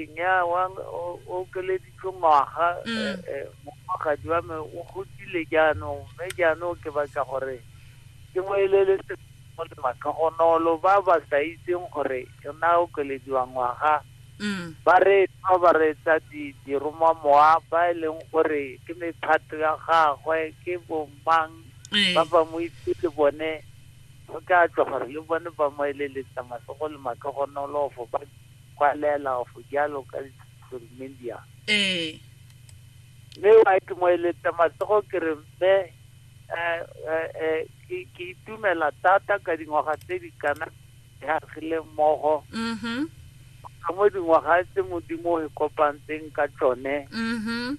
Nnyaa, wa me o o okeleditswe ngwaga, eh, eh, mofagadi wa me o godile jaanong, mme jaanong ke batla gore ke mo eleletse mo le matlhogonolo ba ba sa itseng gore o ne a okelediwa ngwaga, ba reetsa ba reetsa di diromamowa ba e leng gore ke mephato ya gagwe, ke bomang ba ba mo itse le bone go tla tswa gore le bone ba mo eleletsa matsogo le matlhogonolo for ba kwa Lealaof jalo ka social media. Ee. Mme wa ke mo eletsa matsogo ke re mme ke ke itumela thata ka dingwaga tse di kana di agile mmogo. Mhm. Ka mo dingwaga tse modimo o e kopantseng ka tsone. Mhm.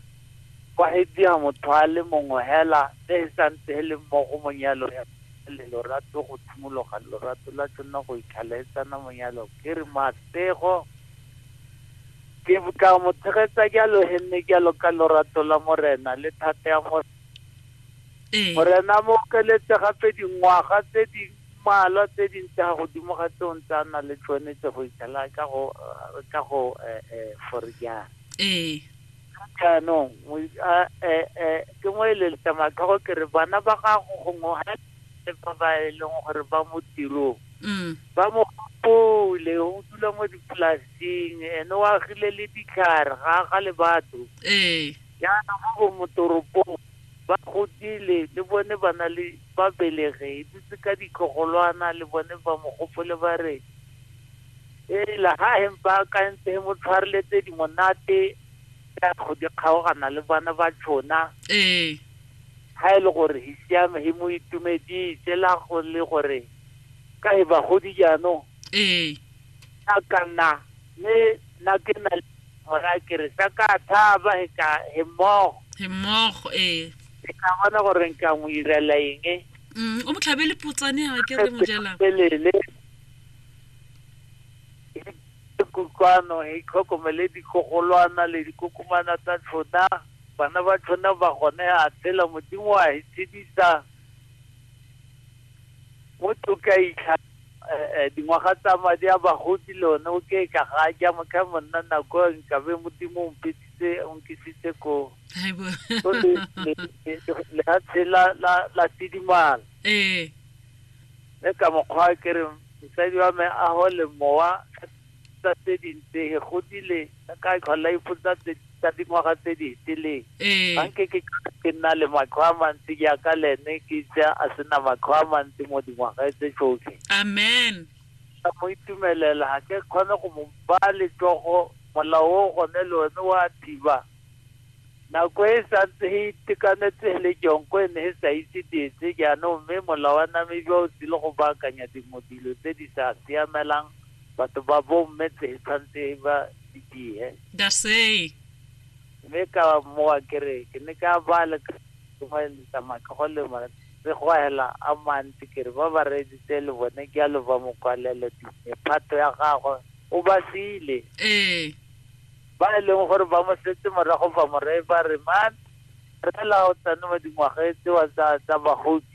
Kwa e dia motho a le mongwe hela tse e santse e le mmogo monyalo ya le lorato go tshimologa lorato la tsona go itlhalaetsana monyalo. Ke re Matego, ke tla mo tshegetsa jalo he mme jalo ka lorato la morena le thata ya mo ee morena mo okeletse gape dingwaga tse di mmalwa tse dintsi ga godimo ga tseo ntse a na le tsone tse go ithala ka go re ka go eh, eh, forejana ee jaanong mo- a- eh, eh, ke mo eleletse matlhogo ke re bana ba gago gongwe ga le ba ba e leng gore ba mo tirong mm. ba mo gopole o dula mo dipolasing ene o agile le ditlhare ga ga le batho ee jaana mo bo motoropong ba godile le bone ba na le ba belege e dutse ka ditlogolwana le bone ba mo gopole ba re ee la ga empa akantse mo tshwareletse dimonate ya go di kgaogana le bana ba tshona ee Ga e le gore he siame he mo itumedise la go le gore ka he bagodi jaanong ee a ka nna mme nna ke na le gora ke re sa ka thaba he ka he mmogo he mmogo ee ke ka bona gore nka mo irela eng Mm, o mo tlhabele potsane a ke re mojela pelele kutlwano he tlhokomele dikogolwana le dikokomana tsa tshona Bana ba tšhona ba gone a tshela Modimo a itshedisa mo toka itlha dingwaga tsa madi a bagodi le one o ke ka ga ja mokha monna nako nkabe Modimo o mpeditse o nkisitse ko Haibo. So le le le- le ha tshela la la tidimala Eh. mme ka mokgwa ke re mosadi wa me a hole mowa tsa tse dintse he godile ka tlhola ipotsa tsa dingwaga tse di fetileng ee. ga nke ke ke nna le matlho a mantsi jaaka le ene ke itse a sena matlho a mantsi mo dingwaga tse tsotlhe amen ka mo itumelela ga ke kgone go mo baya letsogo molao o gone le one wa thiba nako e santse e itekanetse le jonko e ne e sa itse dietse jaanong mme molawana me jwa o tsile go baakanya dingwe dilo tse di sa siamelang Batho ba bo mme tse tshwantse ba di dihe. Dasey. Mme ka mowa ke re ke ne ka ba le ka tsamaya ka go lema re go hela a mantsi ke re ba ba reeditse le bone ke a lo ba mokwalelo dine phato ya gagwe o ba sile. Ee. Ba e leng gore ba mo setse morago ba mo reye ba re man fela o tsane mo dingwageng tsewa tsa tsa bagodi.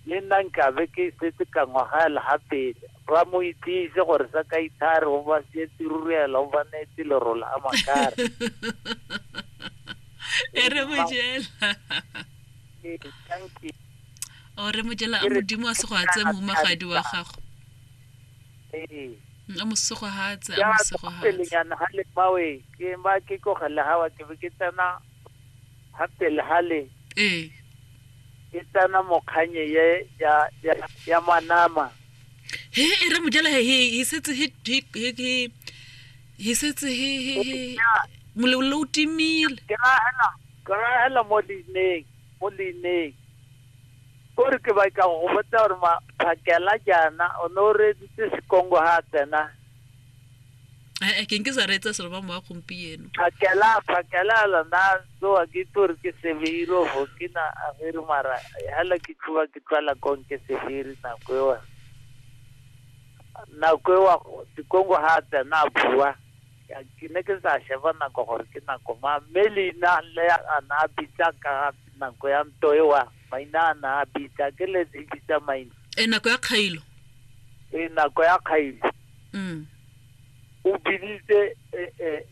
Le nna nkabe ke setse ka ngwagaela ga pele. Ba mo itsise gore sa ka ithare o ba sietse ruruela o ba neetse lerola a makare. e re mojela o re mojela a modimo a sego a tse mo magadi wa gago a mosego ha tse a mosego ha tse nyana ha le mawe ke ba ke ko gele ha wa ke ke tsena ha pele ha le ee e tana mokganye ye ya ya ya manama he e re mojela he he he setse he he he he he setse he he he molelo o timile ke rahela ke rahela mo leineng mo leineng kore ke batla go go botsa gore maphakela jaana o ne o reeditse sekongo ga a tsena Ae, ke nke sa reetsa selo ba mowa gompieno. Phakela, phakela lona tsoa ke itse gore ke severi o bo ke na averi mara hela ke tšhuba ke tlwala kong ke severi nako eo. Nako eo Dikongo ha a tsena a bua ke ne ke sa sheba nako gore ke nako mang mme leina le a na a bitsa ka nako ya ntwa eo Maina a na a bitsa ke le di bitsa maina. E nako ya kgailo. E nako ya kgailo. Mm. O biditse e e